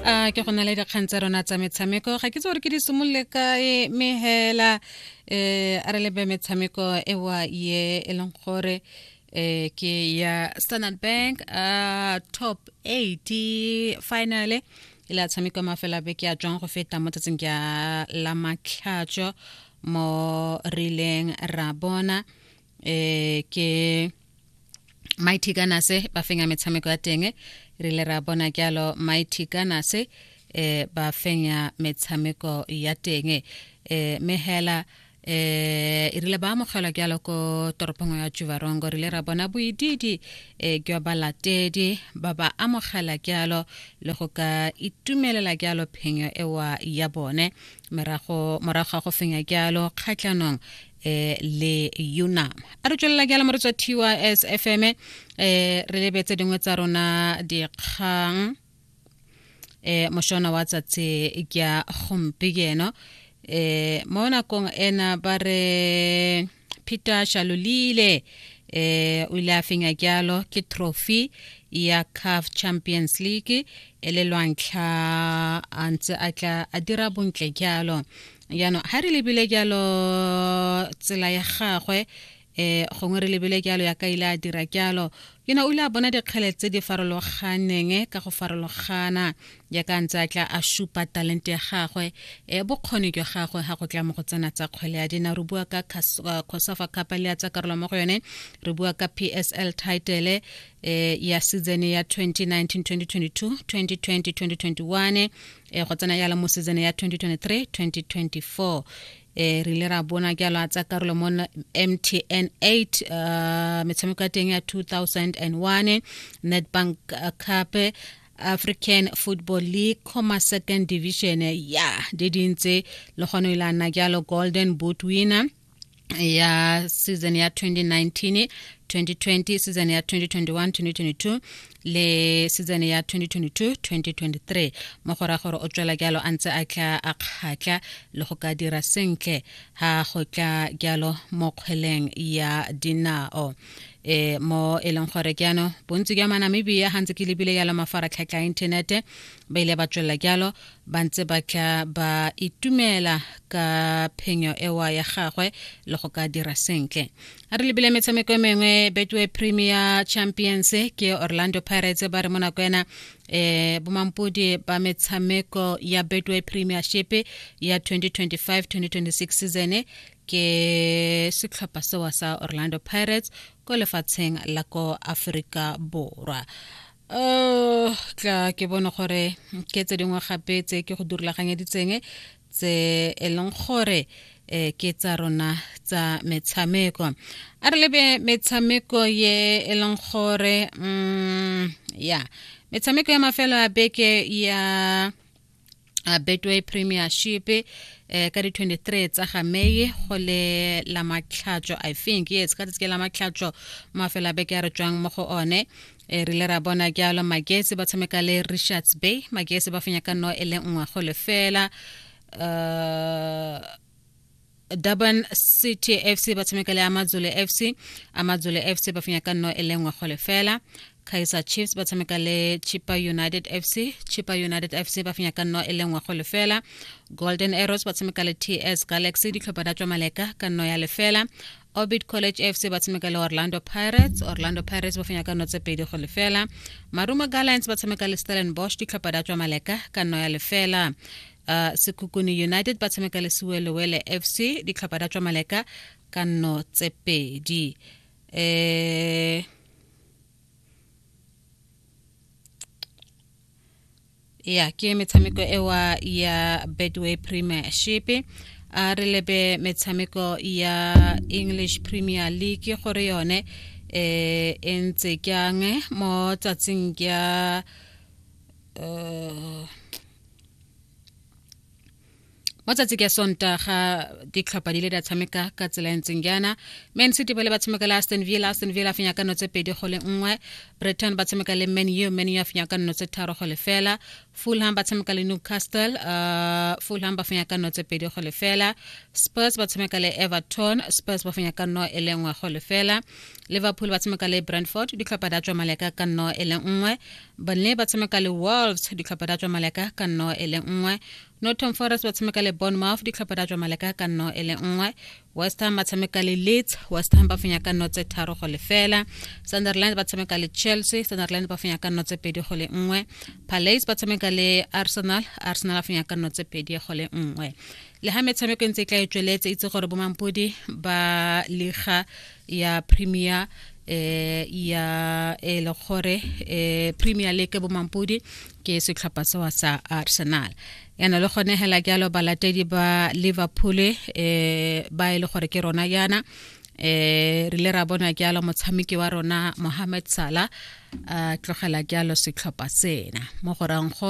a ke go na le dikgang tsa rona tsa metshameko ga ke tse gore ke di simolole kae mme hela um a re lebe metshameko ewa ye e leng gore um ke ya standard bank a top eight finale e le a tshameka mafela beke a tswang go feta mo tsatsing ke a la matlhatso mo rileng ra bona eh ke mighty kanase ba fenya metshameko ya teng re ile ra bona jalo mighty kanase eh ba fenya metshameko ya teng eh mehela eh e rile ba amogelwa jalo ko toropong ya juvarongo re ile ra bona boididi eh jwa balatedi ba ba amogela jalo le go ka itumelela jalo phenyo ewa ya bone morago ga go fenya jalo kgatlhanong eh le yona a re tswelela ke a lamore tswa tys fm eh re lebetse dingwe tsa rona dikgang eh moshona wa tsatse ke ya gompieno eh mo nakong ena ba re peter shalolile eh o ile a fenya jalo ke trophy ya caf champions league e le lwantlha a ntse a tla a dira bontle jalo jaanong ga re lebile jalo tsela ya gagwe eh gongwe re lebile jalo ya ka ile a dira jalo ke ne o ile a bona dikgele tse di farologaneng ka go farologana ya ka ntse a tla a supa talent ya gagwe e bokgoni jwa gagwe ga go tla mo go tsena tsa kgwele ya dina re bua ka cosafa cup le ya tsa karolo mo go yone re bua ka psl title eh ya season ya 2019 2022 2020 2021 e go tsena yalo mo season ya 2023 2024 e re ile ra bona ke a tsa karolo mo mtn 8 uh, metshameko ya teng ya 2001 netbank uh, cup african football league comma second division ya di dintse le gone e la nna jalo golden boot winner ya season ya 2019 2020 season ya 2021 2022 le season ya 2022 2023 mo go ra gore o tswela jalo a ntse a tla a kgatla le go ka dira sentle ha go tla jalo mo kgweleng ya dinao e mo e leng gore ke ano bontsi jwa manamibia ga ntse ke lebile jalo mafaratlhatlha a inthanete ba ile ba tswelela jalo ba ntse ba tla ba itumela ka phenyo ewa ya gagwe le go ka dira sentle a re lebile metshameko e mengwe betway premier champions ke orlando pirates ba re mo nako ena eh bomampodi ba metshameko ya betway premiership ya 2025-2026 season ke setlhopha sewa sa orlando pirates ko lefatsheng la ko aforika borwa oh tla ke bone gore ke tse dingwe gape tse ke go durulaganyeditseng tse e leng gore um ke tsa rona tsa metshameko a re lebe metshameko ye e leng gore um ya metshameko ya mafelo a beke ya uh, betway premiership eh ka di 23 tsa ga meye go le la matlhatso i think yes ka tsike la matlhatso mafela beke ya re tswang mo go one e rile ra bona jalo magesi ba tshameka le richards bay magesi ba fenya ka no e le nngwe go lefela uh durban city fc ba tshameka le amadzole fc amadzole fc ba fenya ka nno e le nngwe go lefela kaiser chiefs ba tshameka le chipa united fc chipa united fc ba fenya ka nno e le nngwe go lefela golden arrows ba tshameka le ts galaxy ditlhopha da tswa maleka ka nno ya lefela orbit college fc ba tshameka le orlando pirates orlando pirates ba fenya ka nno tse pedi go lefela marumo gallants ba tshameka le stellenbosch ditlhopha da tswa maleka ka nno ya lefela uh, sekukune united ba tshameka le sewelewele fc ditlhopha da tswa maleka ka nno tse pedi eh ya ke metshameko ewa ya bedway premiership a re lebe metshameko ya english premier league gore yone eh e ntse kyang mo tsatsing ya uh, mo tsatsi ke sonta ga ditlhopha di le di a tshameka ka tsela e ntseng jaana man city ba le ba tshameka le aston villa aston villa a fenya ka nno tse pedi go le nngwe britain ba tshameka le man u man u a fenya ka nno tse tharo go lefela fulham ba tshameka le newcastle uh, fulham ba fenya ka nno tse pedi go lefela spurs ba tshameka le everton spurs ba fenya ka nno e le nngwe go lefela liverpool ba tshameka le brentford ditlhopha di a tswa maleka ka nno e le nngwe bone ba tshameka le wolves ditlhopha da tswa maleka ka nno e le nngwe norton forest ba tshameka le bournemouth ditlhopha da tswa maleka ka nno e le nngwe west ham ba tshameka le leeds west ham ba fenya ka nno tse tharo go lefela sunderland ba tshameka le chelsea sunderland ba fenya ka nno tse pedi go le nngwe palace ba tshameka le arsenal arsenal ba fenya ka nno tse pedi go le nngwe le ga metshameko e ntse e tla e tsweletse itse gore bomampodi ba liga ya premier eh ya e le gore eh premier league bomampodi ke setlhopha sewa sa arsenal yana le gone hela ke alo balatedi ba liverpool eh ba e le gore ke rona yana eh re le ra bona ke alo motshameki wa rona mohamed sala a tlogela ke alo setlhopha sena mo gorang